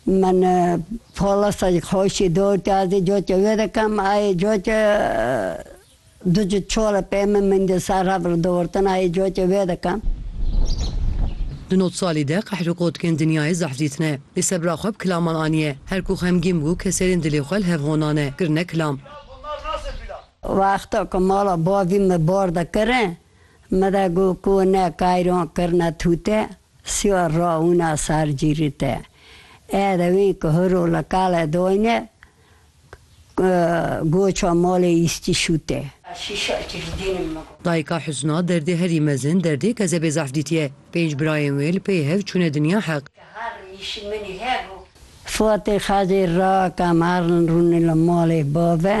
Min polasa ji xweşî dor kir ez ê coka wê dikim. Ayê coka du cih çol e pê min, min di ser hev re dûrtin ayê coka wê dikim. Di not salî de qehr û qotkên dinyayê zehf dîtine. Lê sebra xwe bi kilaman aniye. Her ku xemgîn bû keserên dilê xwe li hev honane, kirine kilam. Wexta ku mala bavî min bar dikirin, min de got ku ne kayran kirine tûte Siwa ra wina sar cîrî te. Ê dewên ku hur û liqale doyne goça malê îstî şûte. Şîşe çi ji dînim me got. Dayika Husna derdê herî mezin derdê kezebê zaf dîtiye. Pênc birayên wê li pey hev çûne dinya heq. Ke herin nîşî min î hebû. Fatê Xezê ra ka herin rûne li malê bav e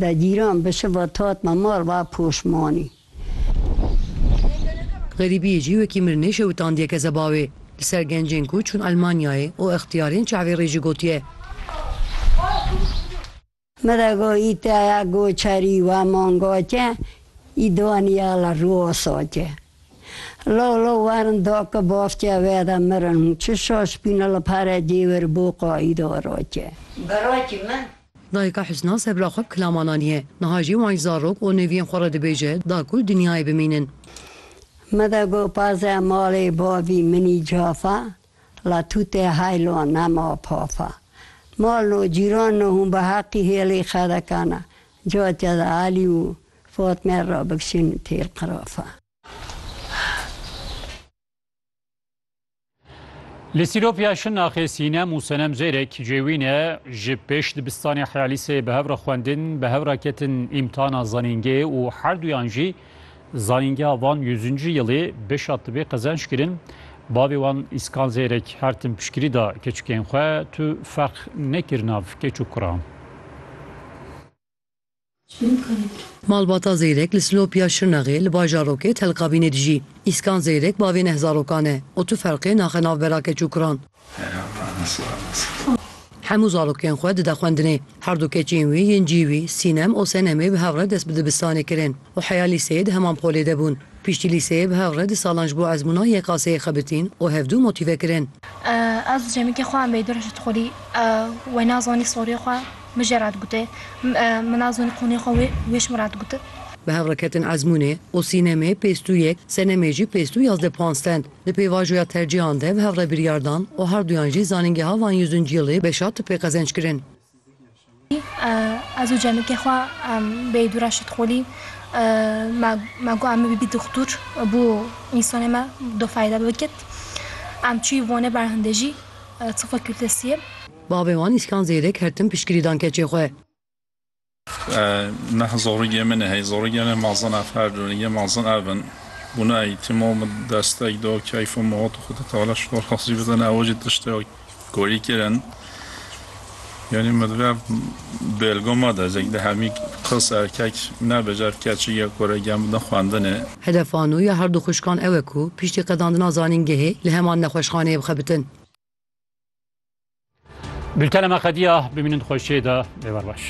Dagîran bi şiva tat me mal va poşmanî. Xerîbiyê jî wekî mirinê şewitandiyeke zebawê li ser gencên ku çûn Elmanyayê û extiyarên çavê rê jî gotiye. Me de got î teya goçerî wa manga ke î daniya li Rûosa ke. Law law werin da ke bavtiya we de mirin hûn çi şaşbîne li pere cêwir bo qayîda ra ke. Birakî min! Dayika Husna ser bila xwe bi kilaman aniye. Niha jî wan ji zarok û neviyên xwe re dibêje da ku li dinyayê bimînin. Me de got parze malê bavî min î cafa, la tu tê heylo nema pafa. Mal no cîran no hûn bi heqî hêlê xedekan a, ca ke di Elî û Fatme re bikişin têl qirafa. Li Sîropya Şirnaxê Sînem û Senem Zêrek cêwîne ji pêş dibistanê heyalîsê bi hev re xwendin, bi hev re ketin îmtihana zanîngê û her duyan jî zanîngeha van yüzüncü yılê beşa tibê qezenç kirin. Bavê wan Îskan Zêrek her tim piştgirî da keçikên xwe, tu ferq nekir nav keç û kuran. Malbata Zeyrek li Silopiya Şirnexê li bajarokê Telkabînê dijî. Îskan Zeyrek bavê neh zarokan e û tu ferqê naxe nav bera keç û kuran. Hemû zarokên xwe dide xwendinê. Herdu keçên wî yên cî wî Sînem û Senemê bi hev re dest bi dibistanê kirin û heya lîseyê di heman polê de bûn. Piştî lîseyê bi hev re du salan ji bo ezmûna YKS'ê xebitîn û hevdu motîve kirin. Ez cemikê xwe em bê dur ji Tolî. We nazanî soriyê xwe min jê re digote. Min nazanî qûnê xwe wê wê ji min re digote. Bi hev re ketin ezmûnê û sînemê pêstû yek, senemê jî pêstû yazdeh puan stend. Di pêvajoya tercîhan de bi hev re biryar dan û herduyan jî Zanîngeha Van Yüzüncü Yılı beşa Tıbbê qezenç kirin. Ez û cemikê xwe bêyî dû re şitxolî me got em ê bibî dixtur bo însanê me do feyda bikit. Em çûyî Wanê berhindê jî Tifla Kürtesiyê. Bavê wan Îskan Zêrek her tim piştgirî dan keçê xwe. Neh zorigê min e hey zorigê min ma zana ferdin yê ma zin ev in bûna îtîmo min desteg do keyfo min hot û xwedî teala şo razî bide ne ew jî tiştê Korî kirin yanî min ve bêlgo ma da zek di hemî qis erkek nebe car keçî ya ku re gem bidin xwendinê. Hedefa nû ya her du xwişkan ew e ku piştî qedandina zanîngehê li heman nexweşxaneyê bixebitin. Bultena me qediya, bimînin di xweşiyê de, bêwer baş.